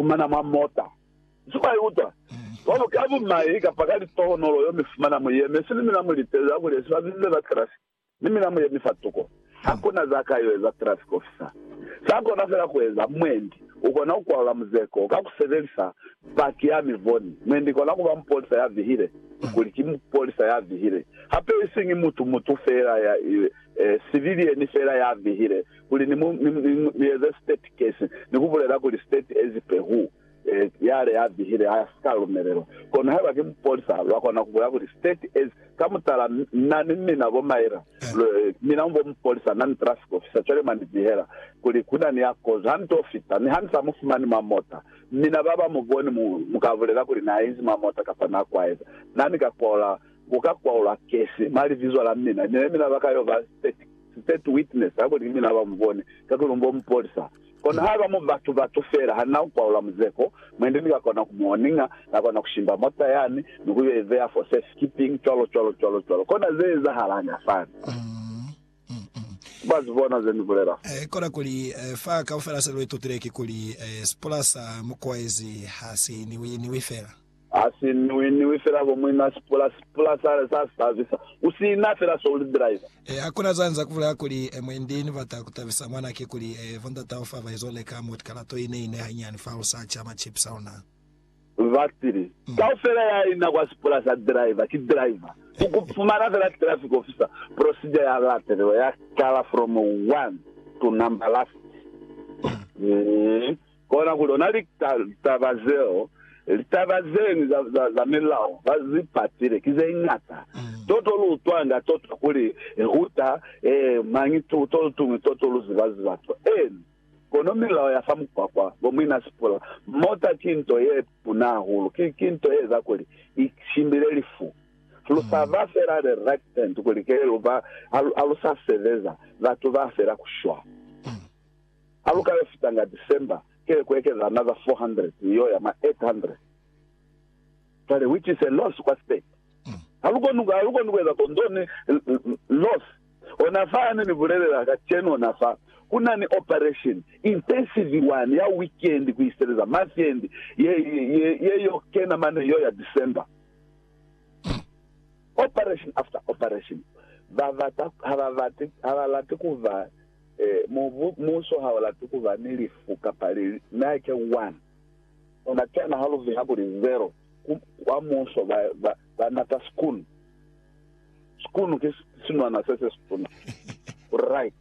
fumana mwa mota. Nsi mwa ikuta cwalo ka bumai kapa ka litohonolo yo mi fumana mu yeme sili mina mu litezi ha kulezi ba bize ba traffic ni mina mu yemi fa tuko. Ha kuna za ka yo eza traffic officer. Sa kona fela ku eza, mwendi u kona ku kwalula muzeko ka ku sebelisa paki ya mi boni. Mwendi kona kuba mupolisa ya vihile kuli ki mupolisa ya vihile. Hape isiñi mutu mutu fela ya, eh, civilian fela ya vihile. kuli ni mu, ni, ni, ni eze state case, ni ku bulela kuli state as per who, e, yale ya bihile ha si ka lumelelwa. Kono haiba ki mupolisa, lwa kona ku bulela kuli state as, ka mutala, na ni mina bo Myra, lwe, mina mu bo mupolisa, na ni traffic officer, cwale mwa ni bihela kuli ku na ni ya kozo. Ha ni to fita, mi ha ni sa mu fumani mwa mota, mina ba ba mu boni, mu, mu ka bulela kuli na inzi mwa mota kapa na kwaeza, na ni ka kwaula, ku ka kwaulwa case mwa libizo la mina, mi ne mina ba ka yo ba state. State witness ha koni mina ba mu bone, kakuli bo mu polisa. Kono haba mu batu batu fela, ha na ukwaula muzeko, mwendi ni ka kona ku mu oninga, na kona ku shimba mota yani, ni ku yo ibeya for safe keeping, cwalo cwalo cwalo cwalo. Kona ze ezahalanga fani. Ba zi bona ze ni bulela fa. Kona kuli, fa kaufela se lu itutile kikuli, sipula sa mu kwaezi ha si niwi niwi fela. Ha si niwi-niwi fela bo muina sipula, sipula sa, sa tabisa. U sina fela so uli driver. E, hakuna za nza kubulela kuli, e, mwendi ni bata kutabisa mwana ki kuli, e, bondat'aho fa ba izo leka mot kalato ine, ine hanyani fa lu sa cha ma chips a luna. Batili. Kaufela ya ina kwa sipula sa driver, ki driver. Ku, ku fumana fela traffic officer, procedure ya latelelwa, ya kala from one to number last. E. Kona ku lona litaba zeo, litaba zeñwi za, za, za milao ba zi patile ki ze ñata. Toto lu utwanga toto kuli e huta, ee, mañi tu, to tuñwi toto lu ziba, ziba to. Eeni. Kono milao ya fa mukwakwa, bo muina sipula, mota ki nto ye tuna hahulu. Ki, ki nto ye eza kuli i shimbile lifu. Lu sa ba fela the right hand kuli kele lu ba, ha lu sa sebeza, batu ba fela ku shwa. Ha lu ka yo fitanga December, kile ku ekeza another 400 mi yo ya mwa 800. Cwale, which is a loss kwa state. Ha lu koni, ha lu koni ku eza ko, nto ni loss. Ona fa hane ni bulelela kacenu, ona fa ku na ni operation, intensive one, ya weekend ku iseleza mafiendi, ye, ye, ye yo kena mane yo ya December. Operation after operation. Ba bata, ha ba bate, ha ba lati ku ba. Ee, mubu, muso ha o lati ku ba ni lifu kapa lili. Na ke one. U na kena ha lu viha kuli zero ku, kwa muso, ba, ba, ba nata sikunu. Sikunu ki sinwana se se situna. Right.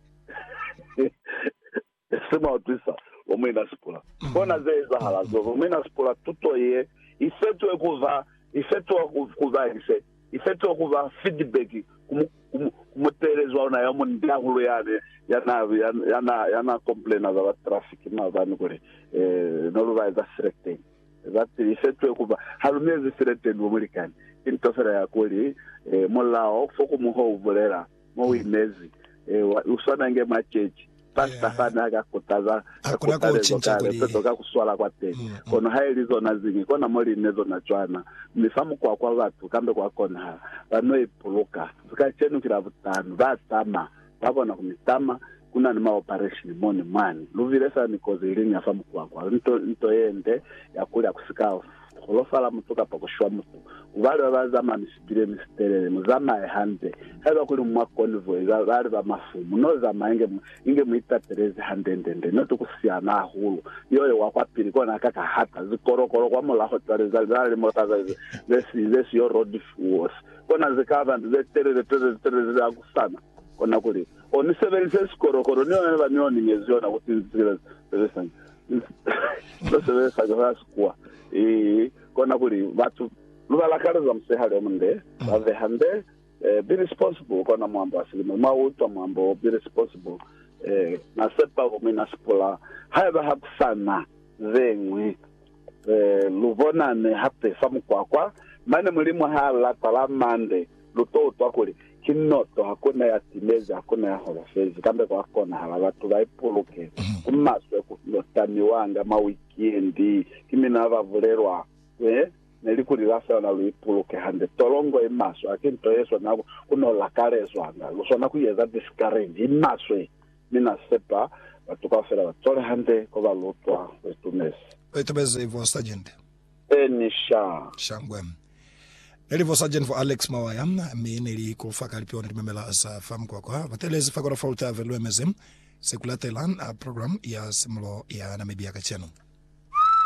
Se mwa utwisa, bo muina Sipula. Kona ze ezahala zo, bo muina Sipula, tuto ye i fetwe ku ba, i fetwa ku ba, i fetwa. I fetoha ku ba fidibeki ku muteelezi wa luna yo munde hahulu yani ya naa komplena za ba trafiki maabani kuli, Ne lu ba eza sireteni. Za pili, i fetohe ku ba ha lu mi ezi sireteni bo mulikani. Ki nto fela ya kuli, mulao fo ku mu ho u bulela mo uimezi ewa uswana nge mwa chechi. Pastor fa na ka kutaza ka kutalezo ka lepezo ka kuswala kwa teni, kono ha ili zona ziñwi kona mo li ne zona cwana, mi fa mukwa kwa batu kambe kwa konahala ba no ipuluka. Kacenu ki Labutano, ba tama, ba kona ku mi tama, Ku na ni maopareshini mo ni mwani. Lu bile fela ni kozi iliñwi ya fa mukwakwa, nto, nto ye nde, ya kuli ha ku si ka holofala mutu kapa ku shwa mutu. Ku bali ba ba zamaya misitileni, sitelele, mu zamaye hande. Haiba kuli mwa konvoyi, ba, ba li ba mafu, mu no zamaya inge mu, inge mu itatelezi hande-nde-nde, noti ku siana hahulu. Yo, yo wa kwa pili, kona a ka ka hata zikolokolo kwa mulaho cwale, za, za na limota za, za, ze si, ze si yo road fuels. Kona ze ka ba ze telele, telele, telele, ze hakusana. Kona kuli, O ni sebelise sikolokolo ni yona ba ni o ni nyezi yona ku sinzisela sebesanga. Lo sebesanga za sikuwa. Ii, kona kuli batu lu ba lakaleza musihali o munde, ba veha nde, eh, be responsible kona mwambo wa silimo. Mwa utwa mwambo wo, be responsible. Eh, na sepa ku mi na sipula haiba ha ku sa na ze ñwi. Lu bonani hape fa mukwakwa, mane Mulimu ha la tala mande, lu to utwa kuli, Ki noto, hakuna ya timezi, hakuna ya holofezi. Kambe kwa konahala batu ba ipuluke. Ku maswe ku yo tamiwanga mwa wikiendi ki mina ba bulelwa, He, ne li kuli la swana lu ipuluke hande. Tolongo i maswe, haki nto ye swana ku no lakalezwanga. Lu swana ku yeza discourage. I maswe. Mi Na sepa batu kaufela ba tole hande ko ba lutwa. U itumezi. U itumezi, Vo Sargent. E ni sha. Shangwe. Neli Vo Sargent, Vo Alex Mawaya, mi neli ku fa ka lipiona limemela za fa mukwakwa. Ba telezi fa Kora Fault Ave, lu emezi se ku latela program ya simulo ya Namibia kacenu.